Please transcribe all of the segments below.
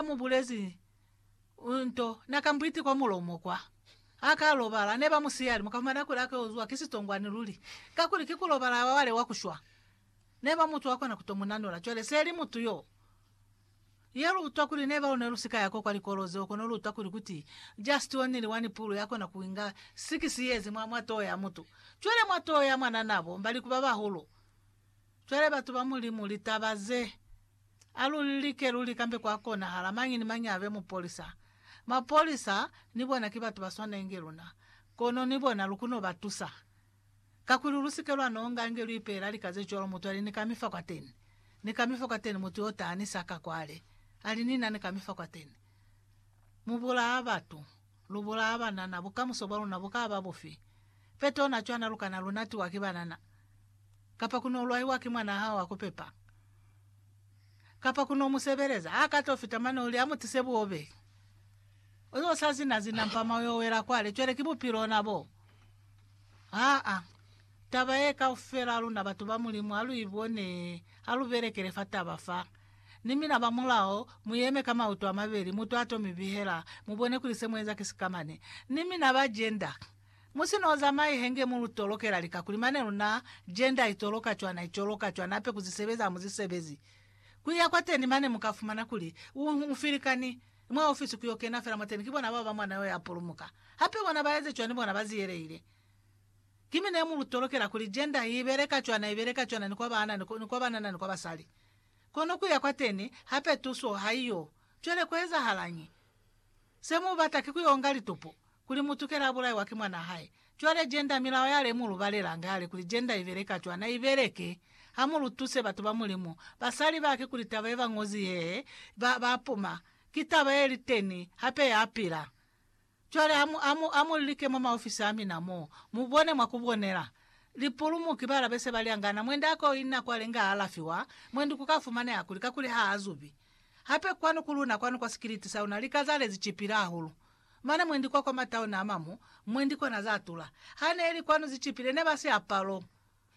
ha mu bulezi nto, na ka mbwiti kwa mulomo kwa. Ha ka lobala, ne ba mu siya limo, ka fumana kuli a ka uzwa ki sitongwani luli, kakuli ki ku lobala wa wale wa ku shwa. Ne ba mu twa kona ku to mu nanula. Cwale se li mutu yo. Ye lu utwa kuli ne ba lu ne lu si ka ya ko kwa likolo zeo, kono lu utwa kuli kuti just only one pulu ya kona ku inga six years mwa, mwa toho ya mutu. Cwale mwa toho ya mwanana bo mba li ku ba bahulu. Cwale, batu ba Mulimu, litaba ze, a lu li like lu likambe kwa konahala mañi ni mañi abe mupolisa. Mapolisa ni bona ki batu ba swanenge luna, kono ni bona lu kuno ba tusa. Kakuli lu sike lwa nonga nge lu ipeela lika ze cwalo, mutu ali, Ni ka mi fa kwateni. Ni ka mi fa kwateni, mutu yo ta ni sa ka kwale, ali, Ni na ni ka mi fa kwateni. Mu bulaa batu. Lu bulaa banana, bukamuso bwa luna bu ka ba bufi? Fe tona cwana lu kana lu natiwa ki banana, kapa ku no lwaiwa ki mwanaa hao wa ku pepa, kapa ku no mu sebeleza. Ha ka to fita mane u li a mu tise buobe. U yo sa zina-zina mpama u yo wela kwale. Cwale ki bupilo ona bo. Aa, taba ye kaufela luna batu ba Mulimu ha lu i bone, ha lu belekele fa taba fa. Ni mina ba mulao, mu yeme ka mauto a mabeli, mutu a to mi bihela, mu bone kuli se mu eza ki sikamane. Ni mina ba jenda, mu si no zamai henge mu lu tolokela lika, kuli mane luna, jenda i toloka cwa, na i coloka cwa, na pe ku zi sebeza ha mu zi sebezi. Ku iya kwateni mane mu ka fumana kuli, u, u filikani, mwa ofisi ku yo kena fela mwateni ki bona bao ba mwana yo ya pulumuka. Hape bona ba eze cwa ni bona ba ziyelehile. Ki mi ne mu lu tolokela kuli jenda i beleka cwana, i beleka cwana ni kwa baana, ni kwa banana, ni kwa basali. Kono kuya kwateni hape tuso haiyo. Cwale kuezahalañi? Se mubata ki kuyoonga litupo, kuli mutukela abulaiwa ki mwanaa hae. Cwale Gender milao yale mulubalela ngale kuli Gender ibeleka cwana ibeleke. Hamulutuse batu ba Mulimu, basali bake kuli taba yeba ñozi yee, ba, ba puma. Ki taba yeliteni, hape yapila. Cwale amu, amu, amu like mwa maofisi amina mo, mu bone mwa kubonela. Lipulumuki bala bese ba lyangana, mwendi a ko ina kwale nga alafiwa, mwendi ku ka fumaneha kuli, kakuli ha a zubi. Hape kwanu ku luna, kwanu kwa sikiliti sa luna, lika za lezi cipile hahulu. Mane mwendi kwa, kwa matauni a mamu, mwendi kona za tula. Ha ne li kwanu zi cipile, ne ba si apalo.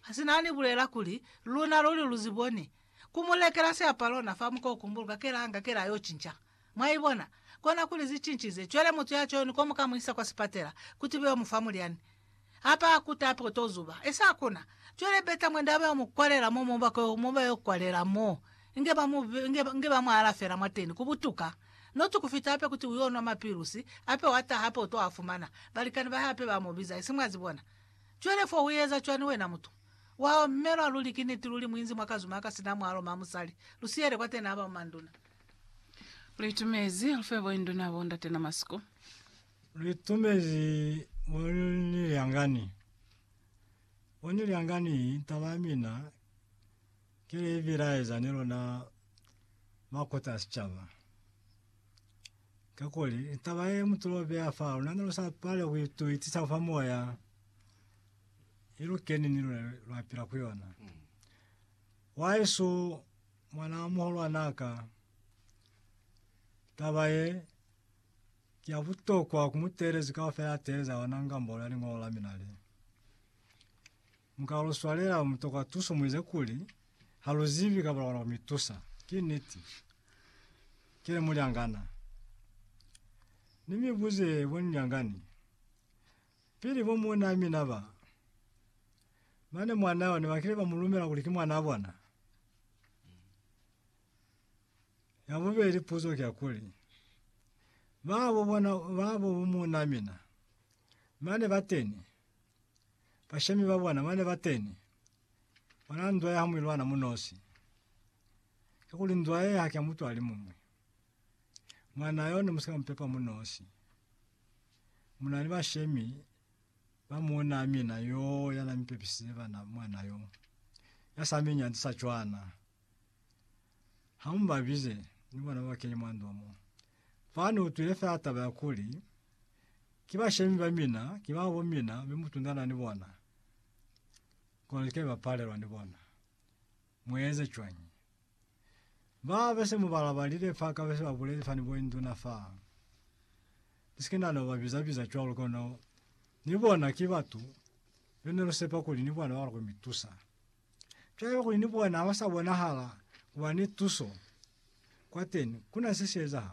Ha si na ni bulela kuli, Luna luli lu si boni. Ku mu lekela siapalo na fa muko ku mbuluka kela anga kela yo cinca. Mwa ibona? Kona kuli zi cincize. Cwale mutu ya cwani ko mu ka mu isa kwa sipatela, kuti be yo mu fa mulyani. Ha pa akuta hape ku to zuba. Esi hakuna. Cwale beta mwende ha ba yo mu kwalela mo mu bako yo, mo ba yo kwalela mo. Inge ba mu, inge, inge ba mu alafela mwateni, ku butuka. Not ku fita hape kuti u yo nwa mapilusi, hape wa taha hape u to a fumana. Balikani ba hae hape ba mu biza. Esi mwa zibona? Cwale fo ueza cwani wena mutu? Wawa mme lwa luli ki niti luli muinzi mwa kazuma aka sina mwalo ma musali. Lusiyele kwateni aba bomanduna. Luitumezi lufe bo induna bo ndate na masiku. Luitumezi mo ni lyangani. Mo ni lyangani taba ya mina. Ki li bilaeza ni luna ba kota ya sicaba. Kakuli, taba ye mu tulo beya fa luna ne lu sa pale ku ituitisa fa moya, i lu keni ni luna lwa pila ku yona. Waisu mwana wa muhulwan'a ka, taba ye, ki ya butokwa ku mu teelezi kaufela ya teeleza yona ngambolo ya Liñolo la mina le. Mu ka lu swalela, mu toka tuso, mu eza kuli ha lu zibi kaba lukona ku mi tusa. Ki niti. Ki li, Mulyangana, ni mi buze bo ni lyangani, pili bo muunaa mina ba, mane mwanaa yona ba kile ba mu lumela kuli ki mwanaa bona? Ya bubeli puzo ki ya kuli, Babo bona, babo bo muunaa mina, mane bateni? Bashemi ba bona bane ba teni, bona nzwa ya hamwilwana munosi. Kakuli nzwa ye haki ya mutu alimuñwi. Mwana yo ne musika mupepa munosi. Munani bashemi ba muuna mina yoo yana mipepisize bana mwana yo. Yasami nyanzi sa cwana. Ha mu ba bize ni bona ba kene mwa ndwa mo. Fa ne utwile fela taba ya kuli, Ki bashemi ba mina, ki ba bo mina, mi mu tundana ni bona. Kono lika iba palelwa ni bona. Mu eze cwañi? Ba be se mu ba labalile fa ka be se ba bulezi fani mwa induna fa. Ni si ke na no ba biza-biza cwalo, kono ni bona ki batu be ne lu sepa kuli ni bona ba lukwa mi tusa. Cwale kuli ni bona ha ba sa bonahala ku ba ni tuso kwateni, ku na se si ezahala.